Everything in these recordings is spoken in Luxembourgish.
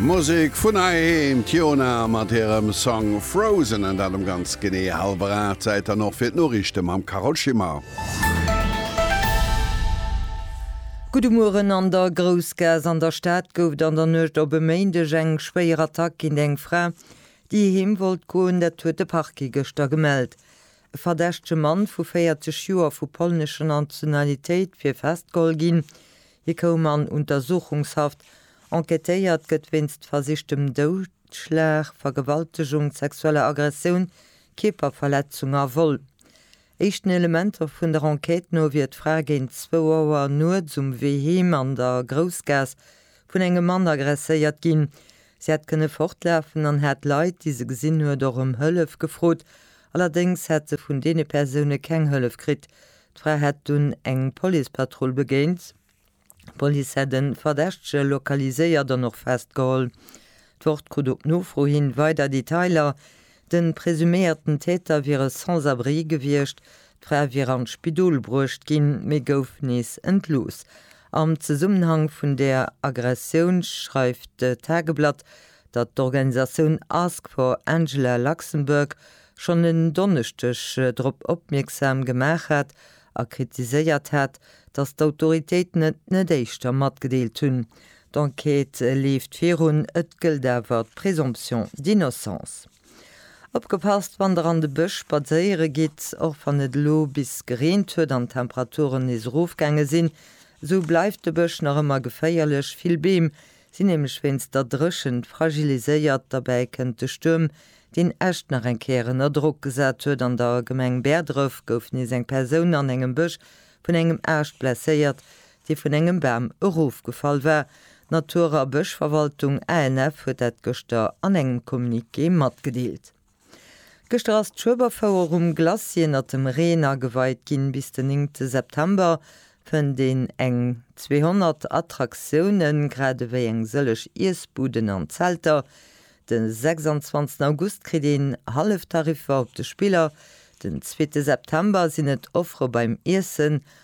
Musek vun heiheem, d'Jona mat hirem Song Frozen, an dat um ganz genee hallwer 8. Zäit dann och fir d'Noriichte mam Carole Schimmer. Gudde Mueren, An der Groussgaass an der Stad gouf et an der Nuecht op e Méindeg eng schwéier Attack géint eng Fra, déi heem wollt goen. Dat huet de Parquet gëschter gemellt. E verdächtege Mann vu 40 Joer vu polnescher Nationalitéit wier festgeholl ginn. Hie koum an Untersuchungshaft. Enquêtéiert gëtt wéinst versichtem Doudschlag, Vergewaltegung, sexueller Aggressioun, Kierperverletzung a Vol. Éischten Elementer vun der Enquête no wier d'Fra géint zwou Auer nuets um Wee heem an der Groussgaass vun engem Mann agresséiert ginn. Si hätt kënne fortlafen an hätt d'Leit, déi se gesinn huet, och ëm Hëllef gefrot. Allerdéngs hätt se vun deene Persoune keng Hëllef kritt. D'Fra hätt dunn eng Policepatrull begéint. D'Police hätt e Verdächtege lokaliséiert an och festgeholl. D'Wort krut op Nofro hin weider Detailer, De presuméierten Täter wier e Sans-abri gewiescht. D'Fra wier an d'Spidol bruecht ginn, mee gouf nees entlooss. Am Zesummenhang vun där Aggressioun schreift d'Tageblatt, datt d'Organisatioun Ask for Angela Luxembourg schonn en Donneschdeg drop opmierksam gemaach hat a kritiséiert hat, datt d'Autoritéiten et net éischter matgedeelt hunn. D'Enquête leeft virun, et gëllt awer d'Présomption d'innocence. Opgepasst, wann der an de Bësch spadséiere gitt, Och wann et elo bis gereent huet an d'Temperaturen nees erofgaange sinn, esou bleift de Bësch nach ëmmer geféierlech. Vill Beem sinn nämlech wéinst der Dréchent fragiliséiert. Derbäi kënnt de Stuerm, deen Äscht nach eng Kéier ënner Drock gesat huet. An der Gemeng Bäerdref gouf nees eng Persoun an engem Bësch vun engem Aascht blesséiert. dee vun engem Bam erofgefall war. D'Natur a Bëschverwaltung, ANF, huet dat gëschter an engem Communiqué matgedeelt. Gëschter ass d'Schueberfouer um Glacis ënnert dem Reen ageweit ginn. Bis den 9 te September fënnt een eng 200 Attraktiounen, grad ewéi eng sëllech Iessbuden an Zelter. De 26 August kritt een Halleftariffer op de Spiller. Den zweete September sinn et Offere beim Iessen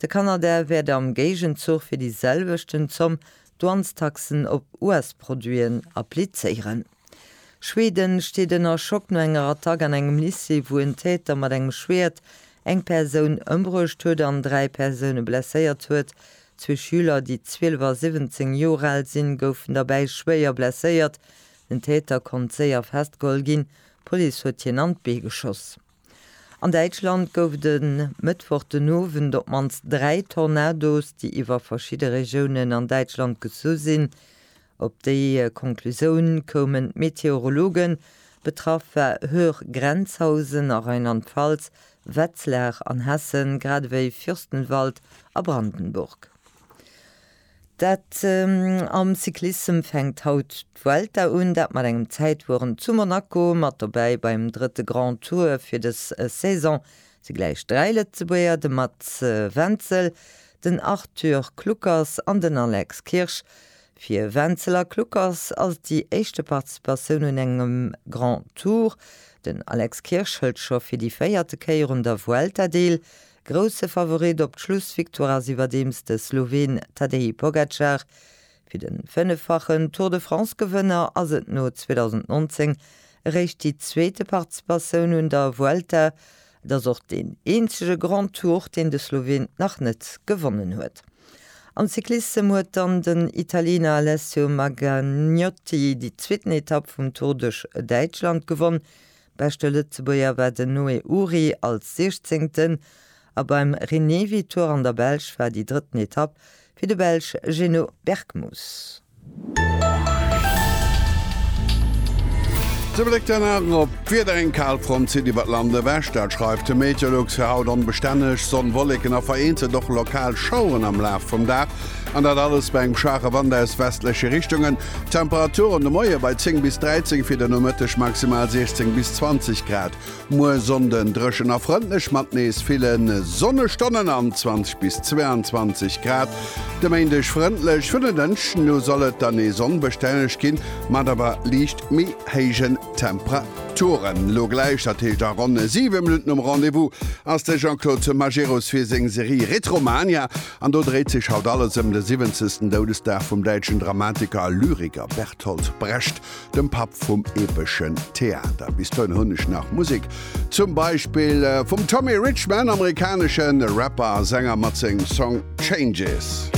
De Kanada wäert am Géigenzuch fir déi selwechten Zomm Douanestaxen op US-Produiten applizéieren. Schweden steet ënner Schock no enger Attack an engem Lycée, wou en Täter mat engem Schwäert eng Persoun ëmbruecht huet an dräi Persoune blesséiert huet. Zwee Schüler, déi 12 a 17 Joer al sinn, goufen derbäi schwéier blesséiert. Den Täter konnt séier festgeholl ginn, d'Police huet hien an d'Bee geschoss. An Däitschland gouf et e Mëttwoch den Owend op d'mannst dräi Tornados, déi iwwer verschidde Regiounen an Däitschland gezu sinn. Op déi Konklusioun koumen d'Meteorologen. Betraff war Höhr Grenzhausen a Rheinland-Pfalz, Wetzlar an Hessen, gradewéi Fürstenwald a Brandenburg. Dat am Cyclissem fänkt haut d'Vuelta un, dat mat engem Zäitwueren zu Monaco. Mat dobäi beim drëtte Grand Tour fir dës Saison si gläich dräi Lëtzebuerger, de Mats Wenzel, den Arthur Kluckers an den Alex Kirsch. Fir Wenzel a Kluckers ass et déi éischte Participatioun un engem Grand Tour. Den Alex Kirsch hëlt scho fir déi véierte Kéier un der Vuelta deel. Grousse Favorit op d'Schlussvictoire ass iwwerdeems de Sloween Tadej Pogacar. Fir de fënneffachen Tour de France-Gewënner ass et no 2019 eréischt déi zweete Participatioun un der Vuelta. Et ass och deen eenzege Grand Tour, deen de Sloween nach net gewonnen huet. Am Cyclissem huet dann den Italiener Alessio Maganiotti déi zweeten Etapp vum Tour duerch Däitschland gewonn, Beschte Lëtzebuerger war den Noé Uhry als Siechzéngten a beim Rinevi Tour an der Belsch war déi drëtten Etapp fir de Belsch Geno Bergmus. Ze Bléck dann awer op d'Wieder, Eng Kalfront zitt iwwert Land ewech, dat schreift de Meteolux. Fir haut onbestänneg Sonn, Wolleken a vereenzelt och lokal Schaueren am Laf vum Dag, an dat alles bei engem schwache Wand aus westleche Richtungen. D'Temperature an de Moie bei 10 bis 13, fir de Nomëtteg maximal 16 bis 20 Grad. Muer Sonnden dréchen a frëndlech mat nees ville Sonnestonnen an 20 bis 22 Grad. De Méindeg frëndlech, vun den Dënschden u soll et dann nees onbestänneg ginn, mat awer liicht méi héijen Temperaturen. Elo gläich, dat heescht a ronn 7 Minutten, um Rendez-vous ass de Jean-Claude Majerus fir seng Serie Retromania. An do dréit sech haut alles ëm de siwwenzegsten Doudesdag vum däitschen Dramatiker a Lyriker Bertolt Brecht, dem Papp vum epeschen Theater. Bis dohin hunn ech nach Musek, zum Beispill vum Tommy Richman, amerikaneschen Rapper a Sänger mat sengem Song Changes.